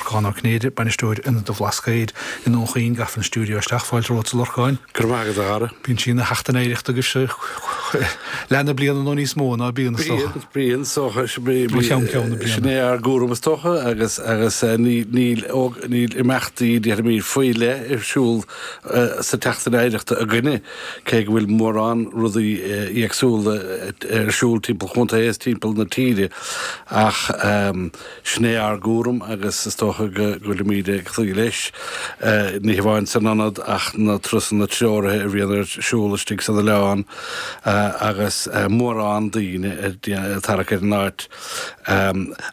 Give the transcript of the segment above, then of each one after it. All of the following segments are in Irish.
Lorcán Ó Cinnéide, Bainisteoir Ionad an Bhlascaoid i nDún Chaoin, gafa an stiúideo isteach, fáilte romhatsa a Lorcáin! Go raibh maith agat, a chara. Bíonn sí ina sheachtain oidhreachta agus leath na bliana nó níos mó, ná bíonn, is dócha. Bíonn, bíonn, ó cheann ceann na bliana. sin é ár gcúram is dócha agus agus níl níl níl imeachtaí déarfaimid faoi leith ar siúl sa tseachtain oidhreachta againne cé go bhfuil mórán rudaí éagsúla ar siúl timpeall an chontae is timpeall na tíre ach Sin é ár gcúram agus is dócha go bhfuilimid ag cloí leis, ní hamháin san ionad ach na trusanna treoraithe a bhíonn ar siúl istigh san oileán agus mórán daoine ag tarrac ar an áit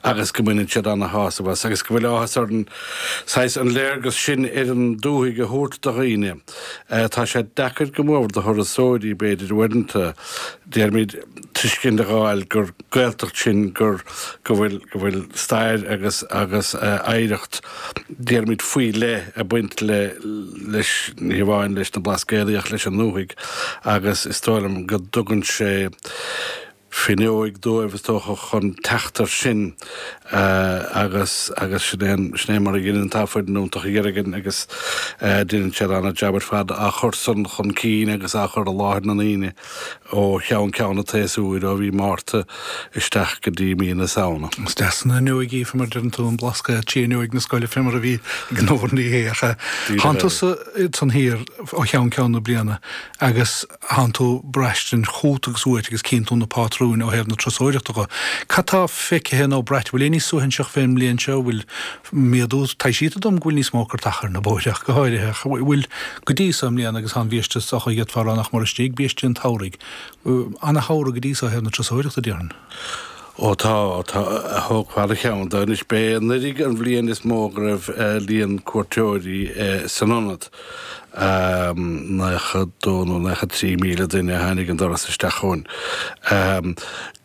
agus go mbaineann siad ana-shásamh as agus go bhfuil áthas orainn saghas an léargas sin ar an dúthaigh a thabhairt do dhaoine. Tá sé deacair go leor do thurasóirí, b'fhéidir, uaireanta. Déarfaimid tuiscint a dh'fháil gur Gaeltacht sinn, gur, go bhfuil, go bhfuil stair agus, agus oidhreacht, déarfaimid faoi leith ag baint le, leis, ní hamháin leis na Blascaodaí ach leis an ndúthaigh agus is dóigh liom go dtugann sé fuinneoig dóibh is dócha chun teacht ar sin agus, agus sin é an, sin é mar a dheineann, tá foireann iontach againn ann, agus deineann siad an-jab ar fad á chur san chun cinn agus á chur i láthair na ndaoine. ó cheann ceann an tséasúir, ó mhí Márta isteach go dtí mí na Samhna. Is deas an fhuinneoig í, fé mar a deireann tú, an Blascaod, arb í fuinneoig na scoile, fé mar a bhí ag an Órnaí é, ach tánn tusa ansan thiar ó cheann ceann na bliana agus tánn tú ag braistint chút agus uait agus cíonn tú na pátrúin ó thaobh na turasóireachta dhe. Cad tá feicthe nó braite, bhfuil aon ní suaithinseach fén mbliain seo, bhfuil méadú. Taibhsítear dom go bhfuil níos mó cairteacha ar na bóithre ach go háirithe, ach bhfuil go dtí so i mbliana agus tá an bhiaiste so chomh fada nach mor istigh biaiste an tsamhraidh. Ana-shamhradh go dtí so ó thaobh na turasóireachta, déarfainn. Ó tá, tá, tógfaimid ceann de. Anois, b'é anuraidh an bhliain is mó go raibh líon cuairteoirí san ionad. 92 nó 93 míle duine a tháinig an doras isteach chugainn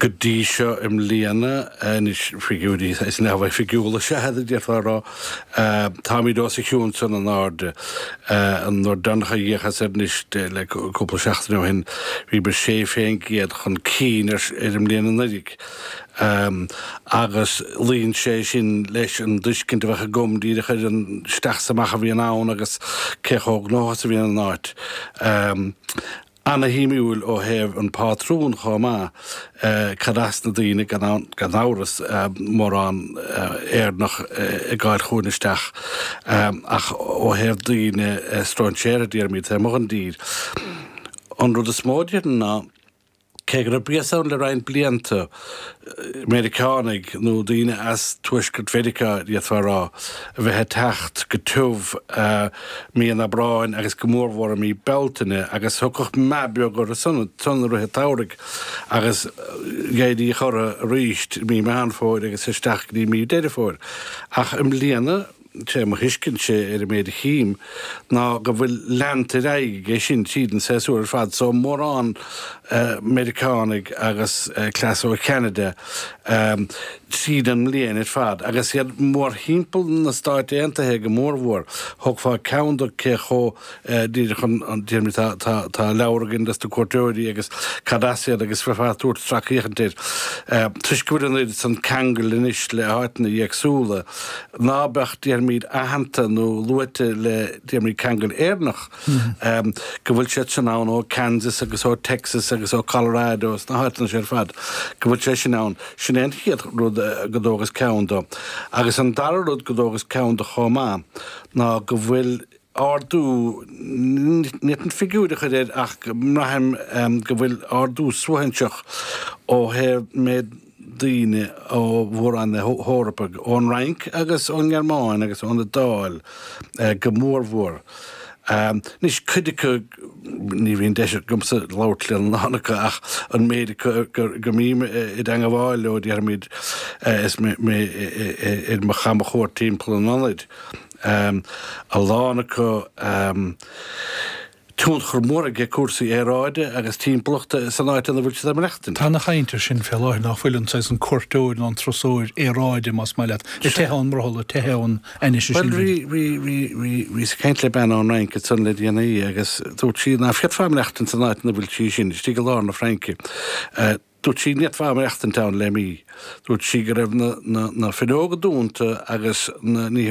go dtí seo i mbliana. Anois, figiúirí neamhoifigiúla is ea iad, a d'fhéadfá a rá. Táimid os a chionn sin in airde. An uair deireanach a dh'fhéachas air anois, le cúpla seachtain ó shin, bhíomar 16 faoin gcéad chun cinn ar an mbliain anuraidh. agus luíonn sé sin leis an dtuiscint a bheadh agam díreach ar an isteach is amach a bhíonn ann agus cé chomh gnóthach is a bhíonn an áit. Ana-shuimiúil ó thaobh an pátrún chomh maith, cad as na daoine, gan aon, gan amhras, mórán Éireannach ag gabháil chugainn isteach, ach ó thaobh daoine, stróinséirí, déarfaimid, taobh amuigh den dtír. An rud is mó a déarfainn ná. Cé go raibh béas ann le roinnt blianta, Meiriceánaigh, nó daoine as Tuaisceart Mheiriceá, d'fhéadfá a rá, a bheith ag teacht go tiubh mí an Aibreáin agus go mórmhór mí Bealtaine, agus thagadh meath beag orthu san ansan i rith an tsamhraidh, agus mhéadaíodh orthu aríst mí Mheán Fómhair agus isteach go dtí mí Deireadh Fómhair. Ach i mbliana. sé mo thuiscintse ar an méid a chím ná go bhfuil leanta ar aghaidh aige sin tríd an séasúr ar fad, so mórán Meiriceánaigh agus cleas ó Cheanada tríd an mbliain ar fad. Agus iad mórthimpeall na Stáit Aontaithe go mórmhór, thógfá ceann de cé chomh Díreach chun déarfaimid tá tá tá leabhar againn dos na cuairteoirí agus cad as iad agus bheifeá ag tabhairt sracfhéachaint air. Toisc go bhfuil an oiread san ceangail anois le háiteanna éagsúla, ná beadh, déarfaimid, aitheanta nó luaite le, déarfaimid, ceangal Éireannach, go bhfuil siad sin ann ó Kansas agus ó Texas agus ó Colorado is na háiteanna seo ar fad, go bhfuil sé sin ann. Sin é an chéad rud go dtógas ceann do. Agus an dara rud go dtógas ceann do chomh maith ná go bhfuil, ardú n'fhéadfainn figiúr a chur air ach braithim go bhfuil ardú suaithinseach ó thaobh méid daoine ó mhór-roinn na hEorpa, ón Fhrainc agus ón nGearmáin agus ón Iodáil go mórmhór. Anois, cuid acu ní bhíonn deis agamsa labhairt lena lán acu ach an méid acu go mbím i dteangmháil leo, déarfaimid, is mé ar mo chamchuairt timpeall an ionaid, um a lán acu um tionchar mór ag ag cúrsaí aeráide agus timpeallachta san áit ina bhfuil siad ag maireachtaint. Tá an-chaint air sin fé láthair ná fuil an saghas an cuairteoir nó an turasóir aeráide más maith leat, ag teitheadh ón mbrothall, ag teitheadh ón aimsir sin. Bhuel, bhí, bhí, bhí, bhí, bhíos ag caint le bean ón Fhrainc ansan le déanaí agus dúirt sí ná féadfá maireachtaint san áit ina bhfuil sí sin, istigh i lár na Fraince. Dúirt sí n'fhéadfá maireachtaint ann le mí. Dúirt sí go raibh na, na, na fuinneoga dúnta agus na nithe